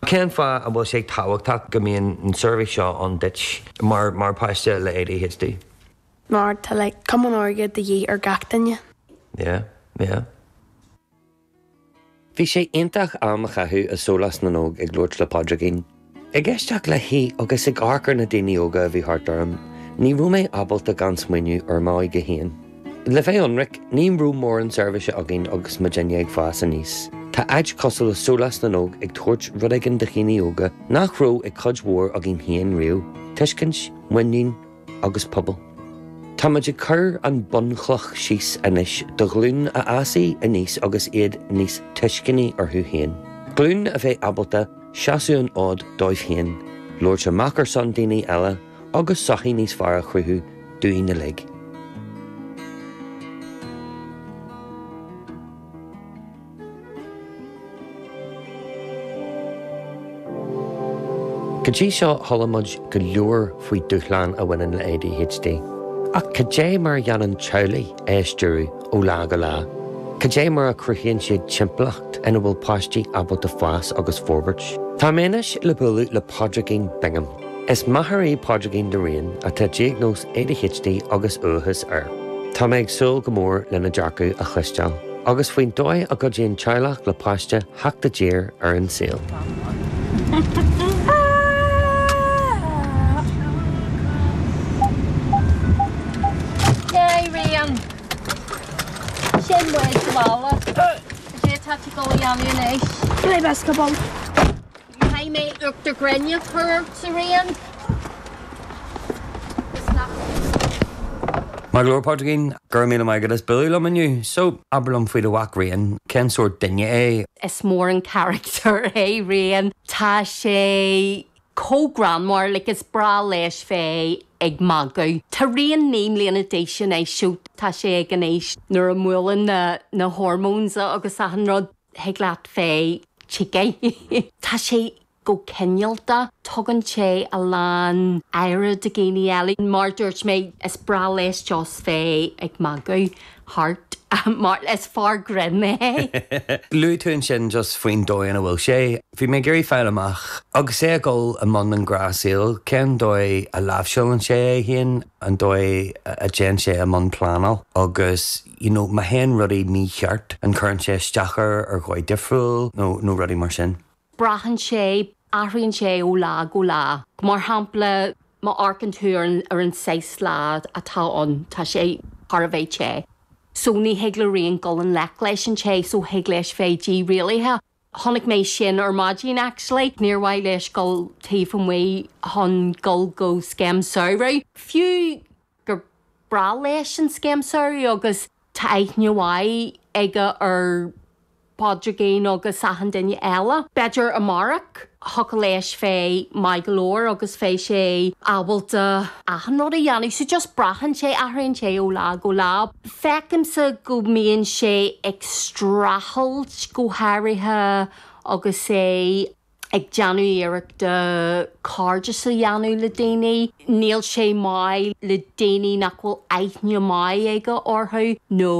Cén fáth an bhfuil sé tábhachtach go mbíonn an seirbhís seo ann duit mar mar páiste le ADHD? Mar tá like comhionannas de dhíth ar gach duine. Yeah, yeah. Bhí sé iontach am a chaitheamh i Sólás na nÓg ag labhairt le Pádraigín, ag éisteacht léi agus ag amharc ar na daoine óga a bhí thart orm. Ní raibh mé ábalta gan smaoineamh ar m'óige féin. Le bheith ionraic, ní raibh mórán seirbhíse againn agus muidinne ag fás aníos. Tá áit cosúil le Sólás na nÓg ag tabhairt rud éigin do dhaoine óga nach raibh ag cuid mhór againn féin riamh, tuiscint, muinín agus pobal. Tá muid ag cur an bhunchloch síos anois do ghlún a fhásfaidh aníos agus iad níos tuisceanaí orthu féin. Glún a bheidh ábalta seasamh an fhóid dóibh féin, labhairt amach ar son daoine eile, agus sochaí níos fearr a chruthú dúinn uilig. Go dtí seo, chuala muid go leor faoi dúshlán a bhaineann le ADHD. Ach cad é mar a dhéanann teaghlaigh é a stiúradh ó lá go lá? Cad é mar a chruthaíonn siad timpeallacht ina bhfuil páistí ábalta fás agus forbairt? Táim anois le bualadh le Pádraigín Bingham. Is máthair í Pádraigín do Rian, atá diagnóis ADHD agus uathachas air. Tá mé ag súil go mór lena dearcadh a chloisteáil, agus faoin dóigh a gcuidíonn teaghlach le páiste theacht i dtír ar an saol. Yay, Rian! Sin muid, sa bhaile. Cad é atá tú ag dul a dhéanamh anois? Play basketball. Caithfidh mé uachtar gréine a chur ortsa Rian is nach. Maith go leor Pádraigín, go raibh míle maith agat as bualadh liom inniu. So, abair liom faoi do mhac Rian, cén sórt duine é? Is mór an carachtar é Rian, tá sé chomh greannmhar, like is breá leis bheith ag magadh. Tá Rian naoi mbliana d'aois anois, so tá sé ag an aois nuair a mbuaileann na na hormones agus achan rud. thig leat bheith tugtha. Tá sé go cineálta, tugann sé a lán aire do dhaoine eile. Mar dúirt mé, is breá leis just bheith ag magadh thart mar is fear grinn é. Luaigh tú ansin just faoin dóigh ina bhfuil sé. Bhí mé ag iarraidh fáil amach, agus é ag dul i mbun an ghnáthshaoil, cén dóigh a láimhseálann sé é féin, an dóigh a dtéann sé i mbun pleanáil agus, you know má théann rudaí mícheart, an cuireann sé isteach air ar dhóigh difriúil nó nó rudaí mar sin? Braitheann sé, athraíonn sé ó lá go lá. Mar shampla, má amharcann tú ar an ar an saghas lá atá ann, tá sé thar a bheith te, so ní thig le Rian dul i ngleic leis an te, so thig leis bheith dírialaithe. Tháinig mé isteach ar maidín actually. Níor mhaith leis dul taobh amuigh chun dul go scéim samhraidh, fiú gur breá leis an scéim samhraidh agus tá aithne mhaith aige ar Phádraigín agus achan duine eile. B'fhéidir amárach. thiocfadh leis bheith maith go leor agus bheadh sé ábalta. achan rud a dhéanamh. So just braitheann sé, athraíonn sé ó lá go lá. Feicimse go mbíonn sé ag streachailt go háirithe agus é ag déanamh iarrachta cairdeas a dhéanamh le daoine. Níl sé maith le daoine nach bhfuil aithne maith aige orthu nó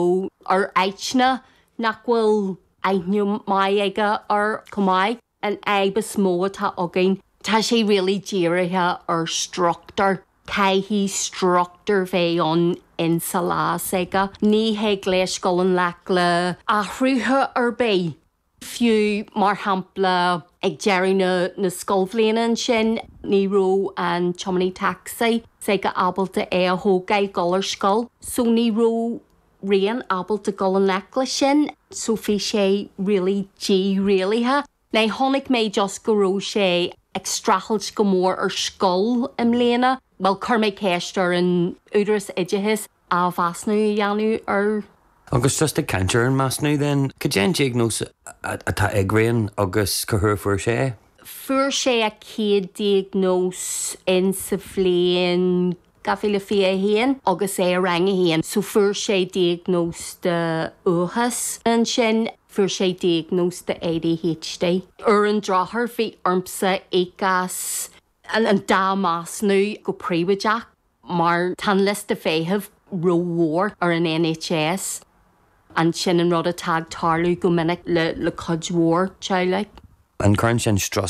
ar áiteanna nach bhfuil aithne maith aige air chomh maith. An fhadhb is mó atá againn, tá sé really dírithe ar struchtúr. Caithfidh struchtúr bheith ann in sa lá s'aige. Ní théann sé i ngleic le athruithe ar bith. Fiú, mar shampla, ag deireadh na scoilbhliana ansin, ní raibh an tiománaí tacsaí s'aige ábalta é a thógáil dul ar scoil, so ní raibh. Rian ábalta dul i ngleic leis sin. So bhí sé really dírialaithe. Né, Chonaic mé just go raibh sé ag streachailt go mór ar scoil i mbliana. Bhuel, chuir mé ceist ar an údaras oideachais athmheasúnú a dhéanamh air. Agus just ag caint ar an measúnú then, cad é an diagnóis atá ag Rian agus cá huair a fuair sé é? Fuair sé a chéad diagnóis in sa bhliain. Dhá mhíle fiche a 1 agus é i Rang 1 so fuair sé diagnóis de uathachas. Ansin fuair sé diagnóis de ADHD. Ar an drochuair bhí ormsa íoc as an dá measúnú go príobháideach mar tá an liosta feithimh ró mhór ar an NHS. An sin an rud atá ag tarlú go minic le cuid mhór teaghlaigh. An cuireann sin strus